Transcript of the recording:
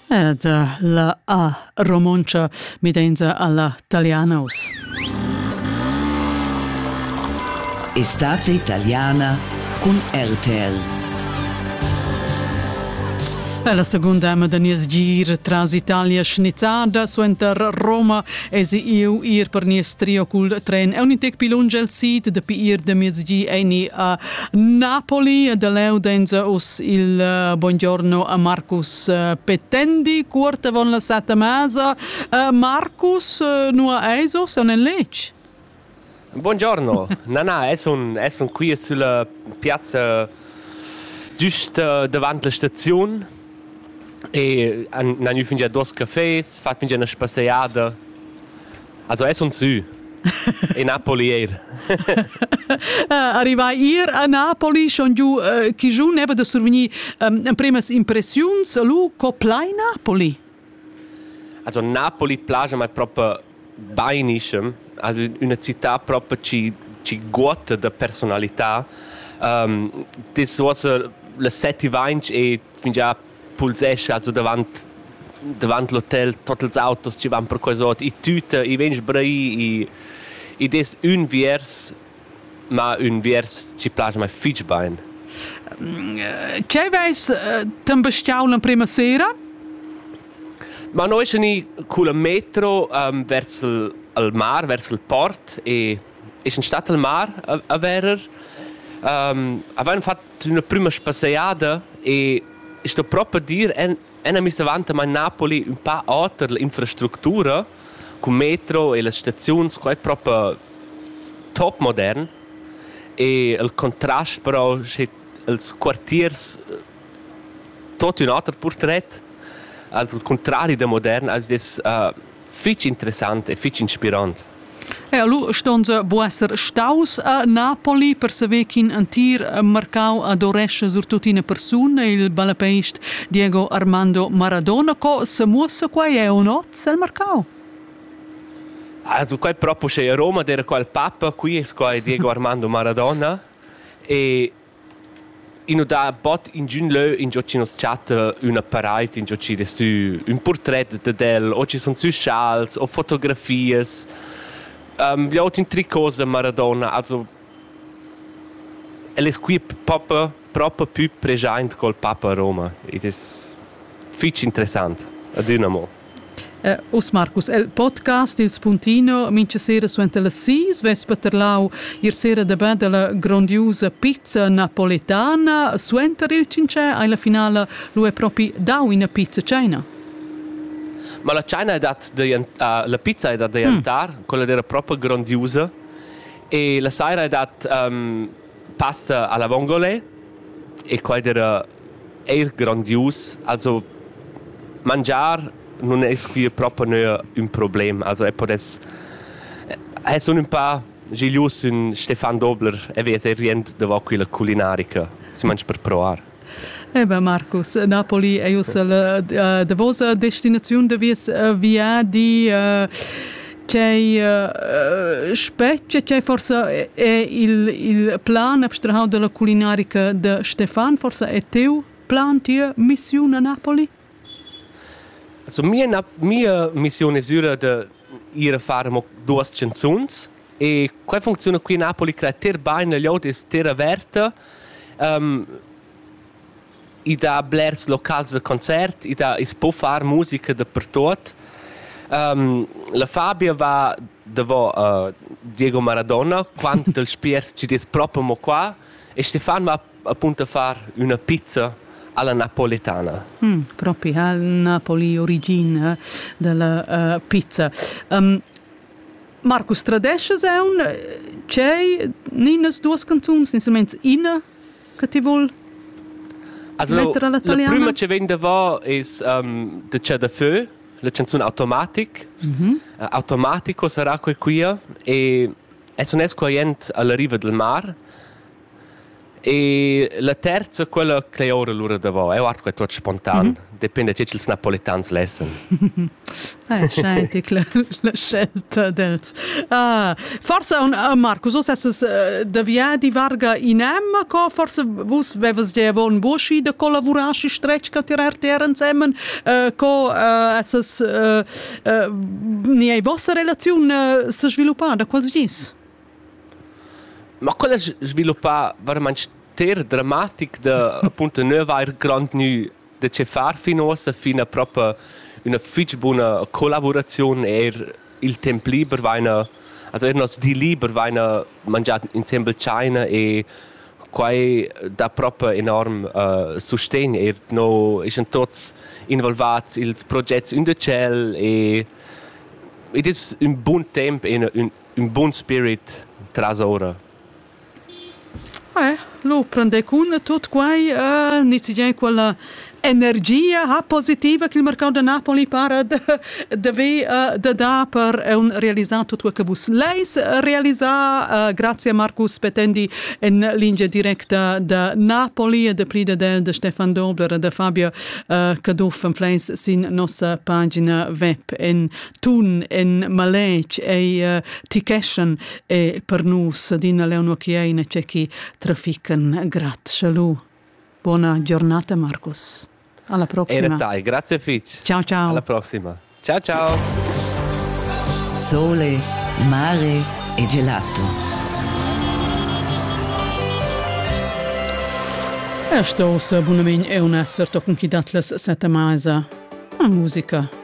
Ed la A romontscha midenza alla Talianos. Estate italiana cun RTL. È la seconda ama da nies gir tras Italia schnizzada suenter Roma esi iu ir per nies trio cul tren. È un intec pi lunge al sid dapi ir da miez gi ei ni a Napoli de Leudenz us il uh, buongiorno a Marcus uh, Petendi cuort avon la sata masa uh, Marcus uh, nua eiso son en lec Buongiorno Nana es un es un qui sulla piazza giusta davant la staziun e an nanu fingia dos cafés fat fingia una spasseiada Also es un sü. E Napoli eir. Arrivai ir a Napoli, schon giù äh, chi giù neba da survegnir ähm, premas impressiuns, lu co plai Napoli? Also Napoli plaja mai proprio bainiscem, also una città proprio ci, ci guota da personalità. Um, das was le sette vainch e fingià pulsescha su davant davant l'hotel tot ils autos che van per quasot i tüta i vens brei i i des ün viers ma ün viers ci place mai fitch bain Che veis t'en bestiau l'emprema sera? Ma noi schi ni cul metro um, vers il, al mar, vers il port e e sun stat al mar a, a verer. Um, avain fat d'üna prüma spassegiada e sto proper dir en ena missa avanta mai Napoli un pa oter l'infrastructura cun metro e las staziuns qua è proper top modern e il contrast però sche els quartiers tot un oter portret als il contrari da modern als des uh, fitg interessant e fitg inspirant. E lu ston se bu esser staus a Napoli per saver ch'in entir marcau adorescha surtut ina persuna, il ballapeist Diego Armando Maradona. Co se muossa quei eu noz el marcau? Also quai proprio che a Roma era qual papa, qui es quai Diego Armando Maradona e I nu dà bod ingün lö ingio chi nu's chatta üna paraid ingio chi dess sü ün purtret dad el o chi sun sü schals o fotografias. Um, gl'ot in tricot da Maradona, also el es qui propa propa pü preschaint col papa a Roma. Id es fich interessant, adüna amo. Eh, uss Marcus, il podcast Il Spuntino, mincha sera suenter las sis, vess paterlau ir sera da bed dalla grondiusa pizza napoletana. Suenter il cincè hai la finala lu è propi dau ina pizza china. Ma la China è dat uh, la pizza è da diantar, mm. quella era proprio grondiusa e la sera è dat um, pasta alla vongole e quella era Eir grandius, also mangiar nun es quia propa gnü ün problem, also e podess e sun ün pa giglius sün Stefan Dobler e vez e riend davo quilla culinarica, simaint per provar. Eh beh Marcus, Napoli ei ussa la davos destinaziun da vies viadi. Tgei spetga, tgei forsa è il, il plan abstrahau dalla culinarica de Stefan, forsa è teu plan, tia missiun a Napoli? Also mia, mia missione è sura de ir a fare mo duas canzuns e qua funziona qui a Napoli creater bene gli aut e terra averta um, I dà blers locals da concert, i dà, i's po far musica dapertuot. la Fabia va davo Diego Maradona quant dal spiert chi'd es propi amo qua e Stefan va appunto a far üna pizza alla napoletana. Propi al Napoli origin da la pizza. Marcus Tradesch es aun, tschei, ninas duos canzuns, instruments, ina? che ti vul Also, Lettera la taliana? La prüma che vegn davò es um, The Cer de Feu, la canzun Automatic. Mm -hmm. uh, Automatico sarà quel quia e es un esquaient alla riva del mar. E la terza, quella che ora l'ura davò, eu art quel tot spontan. Mm -hmm. Depende tge ch'ils napolitans lessan. Ah, scheint la, la scelta dels. Ah, forse un, uh, Marcus, vos esses uh, de viadi varga in emma, co forse vus vevas de avon boschi de collavurar si stretg ca tirar terra ensemen, uh, co uh, esses uh, uh, ni ei vossa relaziun uh, se sviluppar da quasi gis? Ma quel ha sviluppà varamaing ster dramatic da appunto nu avair grandgnü da che far fin uossa, fin a propa üna fich buna collavuraziun. Eir il temp liber vaina, also eir nos di liber vaina mangià insembel tschaina e quai dà propa enorm uh, sustegn. Eir no eschan tuots involvats i'ls progets ün da tschel e id es ün bun temp e ün, Ün bun spirit tras oura. Eh, lu prender cun tut quai uh, nizzegiar quella energia ha positiva che il mercau da Napoli para de, de ve uh, de da per un realizar tutto che vus leis realizar uh, grazie a Marcus Petendi in linea directa de Napoli e de plida de, de Stefan Dobler e de Fabio uh, Caduff en Flens sin nossa pagina web in tun en maletg ei uh, ti cheschen e per nus adina leono chi ei na chi trafican grazie lu buona giornata Markus alla prossima era tai grazie fitch ciao ciao alla prossima ciao ciao sole mare e gelato Sto sa bunamin eu nasser tochen chi dat las seta maisa. A musica.